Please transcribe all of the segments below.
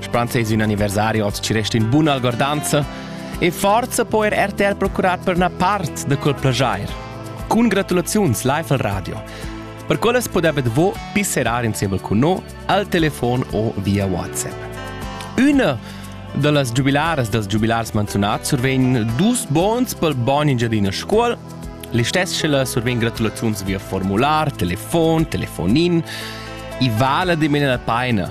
Spans es ün anniversari, hoz ci resta ün bun algordanza e forza po er RTR procurar per una part de quel plagiair. Cun gratulaziuns live al radio. Per quellas podebet vo pisserar insieme con noi al telefon o via WhatsApp. Una da las giubilaras dels giubilars menționats survegn dus bons pel bon Engiadina Scuol, Listess survegn gratulaziuns via formular, telefon, telefonin, i vala de mena la paina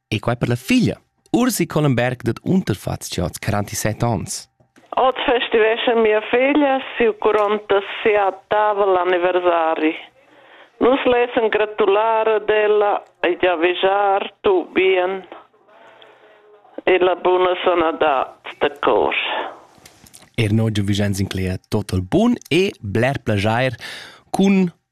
E quai per la figlia, Ursi Collenberg dad Unterfatscha als 47 ans. Oz festiveschan mia figlia siu 47 anniversari. Nus lessen gratular ad ella e già vigiar tu bien e la buna sanadad da cor. Er noi giu Vicenz incleia tot il bun e bler plagiair cun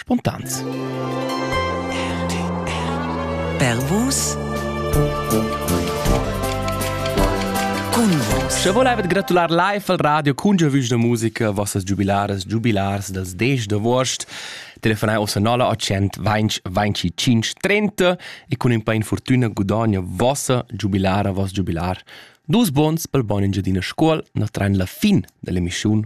spontans. Per vus Sche volevet gratular live al radio cun giovüs da musica, vossas giubilaras, giubilars dels 10 d'agost. Telefonai ossa 0800 20 25 30 e con in pa infortuna gudogna vossa giubilara, voss giubilar dus bons pel bon Engiadina Scuol, na train la fin dell'emissiun